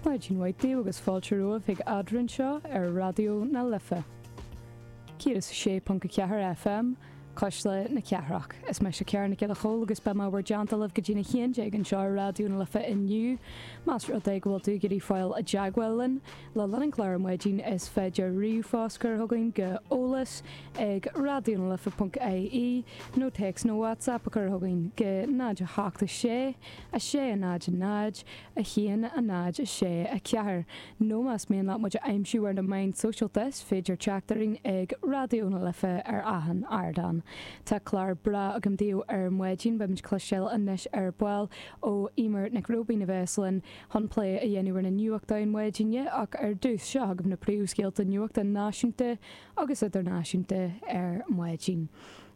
Maidin mhaith daoibh agus fáilte romhaibh chuig Eadrainn anseo ar Raidió na Life 106.4 FM, cuisle na cathrach. Is mise Ciara Nic Giolla Chomhaill agus beidh mé bhur dteannta libh go dtí'n 11 anseo ar Raidió na Life inniu. Más rud é go bhfuil tú ag iarraidh fáil i dteagmháil linn le linn an chláir ar maidin is féidir ríomhphost a chur chugainn go eolas ag raidionalife.ie nó téacs nó WhatsApp a chur chugainn go 0 8 6 6, 0, 0, 1, 0, 6, 4, nó más mian leat muid a aimsiú ar na meáin sóisialta is féidir teacht orainn ag Raidió na Life ar achan ardán. Tá clár breá againn daoibh ar maidin, beimid ag cloisteáil anois ar ball ó Emer Nic Róibín a bheas linn chun plé a dhéanamh ar na nuachtáin maidine ach ar dtús seo agaibh na príomhscéalta nuachta náisiúnta agus idirnáisiúnta ar maidin.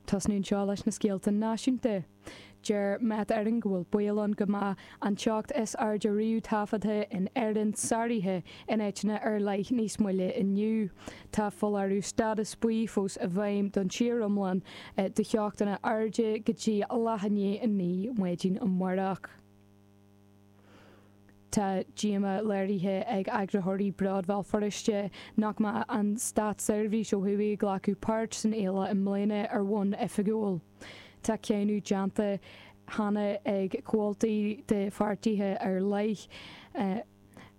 Tosnú anseo leis na scéalta náisiúnta. Deir Met Éireann go bhfuil baol ann go mbeadh an teocht is airde riamh taifeadta in Éirinn sáraithe in áiteanna ar leith níos moille inniu. Tá foláireamh stádas buí fós i bhfeidhm don tír iomlán do theochtanna arda go dtí leath i ndiaidh a naoi maidin amáireach. Tá díomá léirithe ag eagraitheoirí Bród Bhéal Feirste nach mbeidh an státseirbhís ó thuaidh ag glacadh páirt san fhéile i mbliana ar bhonn oifigiúil. Tá cáineadh déanta cheana ag comhaltaí de pháirtithe ar leith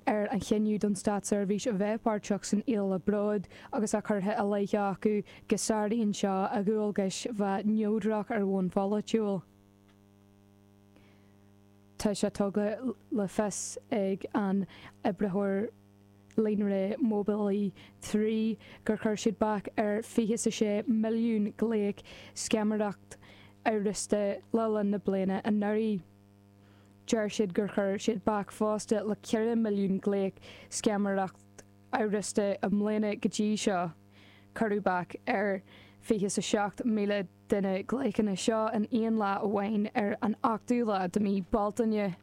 ar an chinneadh don státseirbhís a bheith páirteach san fhéile Bród agus tá curtha i leith acu go sáraíonn seo a dhualgas a bheith neodrach ar bhonn polaitiúil. Tá sé tugtha le fios ag an oibritheoir líonra móibílí trí gur chuir siad bac ar fiche is a sé milliún glaoch scamaireacht amhrasta le linn na bliana anuraidh. Deir siad gur chuir siad bac fosta le ceithre milliún glaoch scamaireacht amhrasta i mbliana go dtí seo. Cuireadh bac ar fiche is a seacht míle de na glaochanna seo in aon lá amháin ar an ochtú lá de mí Bealtaine.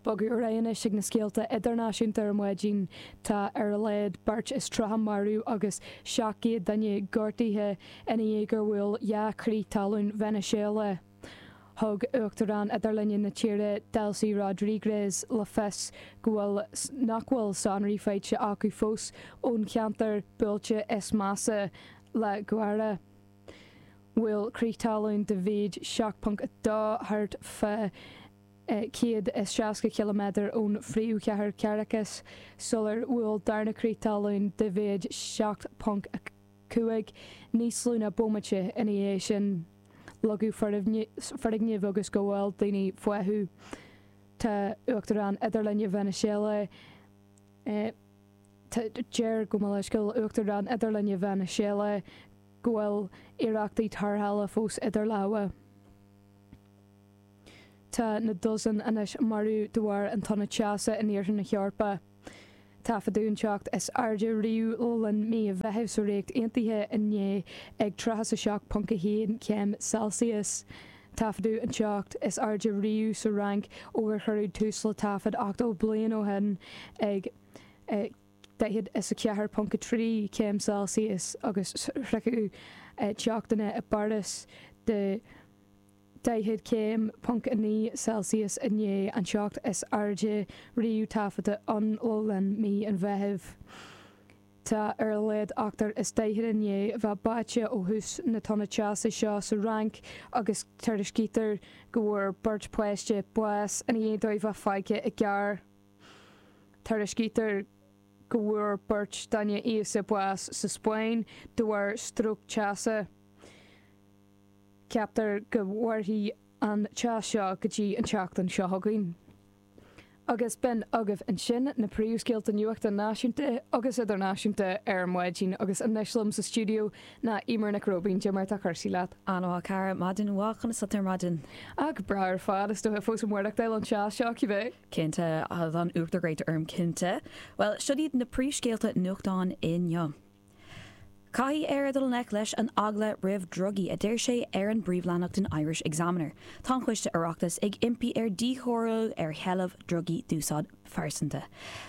Bogadh ar aghaidh anois ag na scéalta idirnáisiúnta ar maidin. Tá ar a laghad beirt is tríocha marbh agus 700 duine gortaithe ina dhiaidh gur bhuail dhá chrith talún Veiniséala. Thug Uachtarán idirlinne na tíre Delcy Rodriguez le fios go bhfuil nach bhfuil sonraí faighte acu fós ón cheantar buailte is measa La Guaira. bhfuil crith talún de mhéid 7.2 thart fá 160 km ón phríomhchathair Caracas, sular bhuail darna crith talún de mhéid 7.5 níos lú ná bomaite ina dhiaidh sin. Leagadh foirgnimh agus go bhfuil daoine fúthu. Tá Uachtarán Idirlinne Veiniséala, a deir gabh mo leithscéal, Uachtarán Idirlinne Veiniséala, go bhfuil iarrachtaí tarrthála fós idir lámha. Tá na dosaenacha marbh de bharr an tonn teasa in Iarthar na hEorpa. Taifeadadh an teocht is airde riamh le linn mí an Mheithimh sa Ríocht Aontaithe inné ag 37.1 céim Celsius. Taifeadadh an teocht is airde riamh sa Fhrainc ó gur cuireadh tús le taifead 80 bliain ó shin ag 44.3 céim Celsius agus shroich an teocht inné i bPáras 40.9 céim Celsius inné an teocht is airde riamh taifeadta ann le linn mhí an Mheithimh. Tá ar a laghad ochtar is daichead i ndiaidh a bheith báite ó thús na tonna teasa seo sa Fhrainc agus tuairiscítear go bhfuair beirt páiste bás i ndiaidh dóibh a bheith fágtha i gcarr. Tuairiscítear go bhfuair beirt duine aosta bás sa Spáinn de bharr stróc teasa. Ceaptar go mhairfidh an teas seo go dtí an tseachtain seo chugainn. Agus b'in agaibh ansin na príomhscéalta nuachta náisiúnta agus idirnáisiúnta ar an maidin agus anois liom sa stiúideo ná Eimear Nic Róibín. Cad é mar atá cúrsaí leat. An-mhaith a chara. Maidin mhaith. Conas atá tú ar maidin? Ach breá ar fad. Is dócha fós ag maireachtáil an teas seo, cibé. Cinnte, tá an t-uachtar gréine orm, cinnte. Bhuel, seo iad na príomhscéalta nuachtáin inniu. Caithfidh Éire dul i ngleic leis an eagla roimh dhrugaí, a deir sé ar an bpríomhleathnach den Irish Examiner. Tá an Coiste Oireachtais ag impí ar dhíchoiriú ar sheilbh drugaí d'úsáid phearsanta.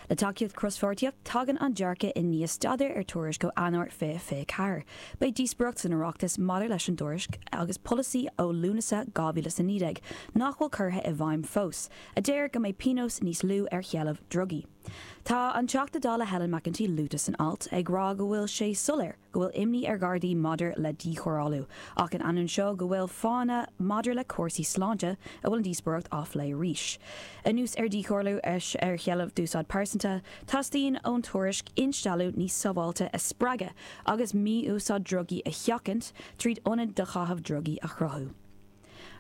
Le tacaíocht cros-pháirtíocht, tagann an dearcadh i ndiaidh staidéar ar thuairisc ó Eanáir 2024. Beidh díospóireacht san Oireachtas maidir leis an dtuairisc agus polasaí ó Lúnasa 2019 nach bhfuil curtha i bhfeidhm fós. a deir go mbeidh pionós níos lú ar sheilbh drugaí. Tá an Teachta Dála Helen McEntee luaite san alt, ag rá go bhfuil sé soiléir go bhfuil imní ar Ghardaí maidir le díchoiriúlú, ach in ainneoin seo go bhfuil fáthanna maidir le cúrsaí sláinte a bhfuil an díospóireacht á plé arís. Anuas ar dhíchoiriúlú ar sheilbh d'úsáid phearsanta, teastaíonn ón tuairisc instealladh níos sábháilte a spreagadh agus mí-úsáid drugaí a sheachaint tríd ionad do chaitheamh drugaí a chruthú.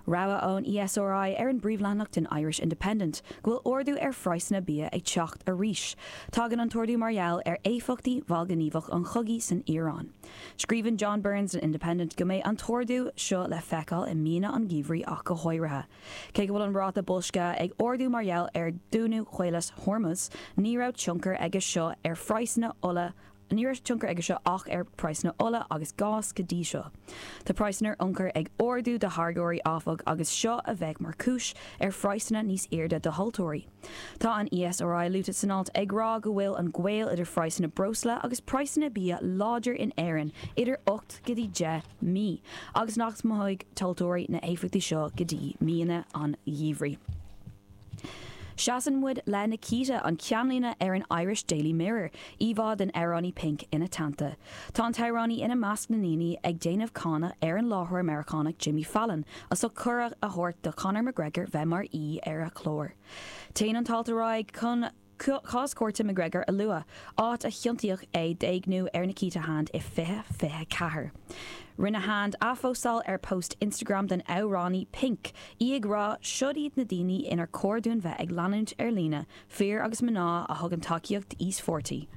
Rabhadh ón ESRI ar an bpríomhleathanach den Irish Independent go bhfuil ardú ar phraghsanna bia ag teacht arís. Tagann an t-ardú mar gheall ar éifeachtaí mhallghníomhach an chogaidh san Iaráin. Scríobhann John Burns don Independent go mbeidh an t-ardú seo le feiceáil i míonna an gheimhridh ach go háirithe. Cé go bhfuil an ráta boilscithe ag ardú mar gheall ar dhúnadh Chaolas Hormuz, ní raibh tionchar aige seo ar phraghsanna ola agus Ní raibh tionchar aige seo ach ar praghsanna ola agus gáis go dtí seo. Tá praghsanna ar ionchur ag ardú do tháirgeoirí, áfach, agus seo a bheidh mar chúis ar phraghsanna níos airde do thomhaltóirí. Tá an ESRI luaite san alt ag rá go bhfuil an gaol idir phraghsanna breosla agus praghsanna bia láidir in Éirinn idir ocht go dtí deich mí agus nach mothóidh tomhaltóirí na héifeachtaí seo go dtí míonna an gheimhridh. Seasann muid le Nikita, an ceannlíne ar an Irish Daily Mirror, íomhá den amhránaí Pink ina teannta. Tá an t-amhránaí ina measc na ndaoine ag déanamh cáineadh ar an láithreoir Meiriceánach Jimmy Fallon as ucht cuireadh a thabhairt do Conor McGregor bheith mar aoi ar a chlár. Téann an t-alt ar aghaidh chun cás cúirte McGregor a lua, áit a chiontaíodh é d'éigniú ar Nikita Hand i 2024. Rinne Hand athphóstáil ar post Instagram den amhránaí Pink, í ag rá Siod iad na daoine inar chóir dúinn bheith ag leanúint ar líne, fir agus mná a thugann tacaíocht d'íospartaigh.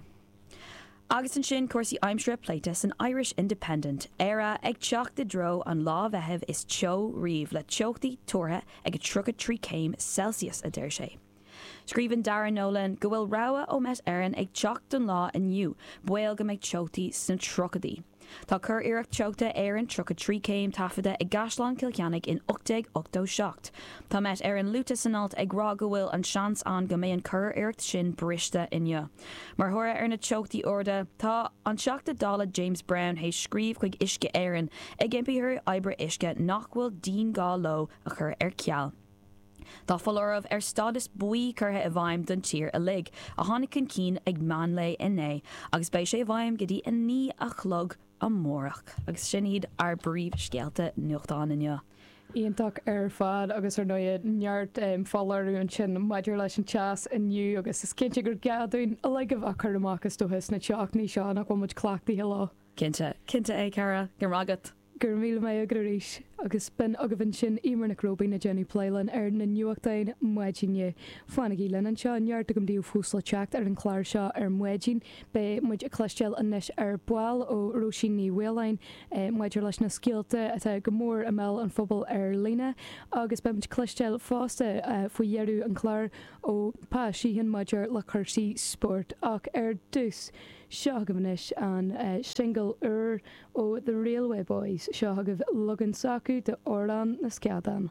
Agus ansin cúrsaí aimsire pléite san Irish Independent, Éire ag teacht i dtreo an lá Mheithimh is teo riamh le teochtaí tuartha ag 33 céim Celsius, a deir sé. Scríobhann Darragh Nolan go bhfuil rabhadh ó Met Éireann ag teacht don lá inniu, baol go mbeidh teochtaí sna tríochaidí. Tá curiarracht teochta Éireann 33 céim taifeadta i gCaisleán Chill Chainnigh in 1887. Tá Met Éireann luaite san alt ag rá go bhfuil an seans ann go mbeidh an curiarracht sin briste inniu. Mar thoradh ar na teochtaí arda, tá an Teachta Dála James Browne théis scríobh chuig Uisce Éireann ag impí orthu oibre uisce nach bhfuil dianghá leo a chur ar ceal. Tá foláireamh ar stádas buí curtha i bhfeidhm don tír uilig, a tháinig chun cinn ag meánlae inné, agus beidh sé i bhfeidhm go dtí a naoi a chlog amárach. Agus sin iad ár bpríomhscéalta nuachtáin inniu. Iontach ar fad, agus ar ndóigh neart foláireamh ansin maidir leis an teas inniu, agus is cinnte gur gá dúinn uilig a bheith cúramach is dócha sna teochtaí seo nach bhfuil muid cleachtaithe leo. Cinnte, cinnte, a Cara. Go raibh maith agat. Go raibh míle maith agat arís agus b'in agaibh ansin Emer Nic Róibín ag déanamh plé linn ar na nuachtáin maidine. Fanaigí linn anseo, neart agam daoibh fós le teacht ar an chlár seo ar maidin. Beidh muid ag cloisteáil anois ar ball ó Róisín Ní Mhaoláin maidir leis na scéalta atá go mór i mbéal an phobail ar líne agus beidh muid ag cloisteáil fosta faoi dheireadh an chláir ó Pa Sheehan maidir le cúrsaí spóirt. Ach ar dtús, seo agaibh anois an singil úr Ó The Railway Boys, seo agaibh leagan s'acu de 'Amhrán na Sceadán'.